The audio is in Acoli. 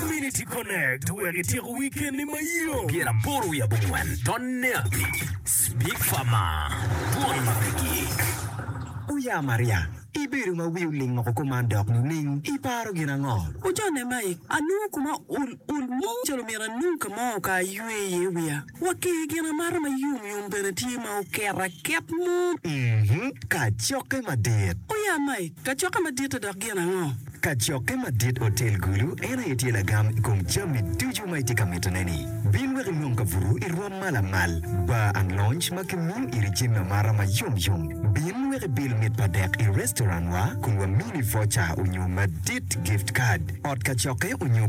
Community Connect wek ityeko wikenni mayom. Pyera aboro wiye abongwen tonne abic Big Pharma Bwon ma pe gik. Uya Maria, ibedo ma wi oling oko kuman dok nining? Iparo gin ango? Ucone Mike, anongo kuma ul ul mo calo myero anong ka mo ka aywe iye wiya. Wa ki i gin amata ma yom yom bene tye ma oket aket mo. Mm-hmm. Kacokke madit. O ya Mike, kacokke madit-ti dok gin ango? Kacokke madit Otel Gulu en aye tye lagam i kom jami ducu ma itye ka mitone-ni. Bin wek inong kabuto i rwom ma lamal, bar and lounge ma kimiyo iri jami amata ma yom yom. Bin wek ibil mit pa dek i restaurant-wa kun wamini voucher onyo madit, gift card, ot kacokke onyo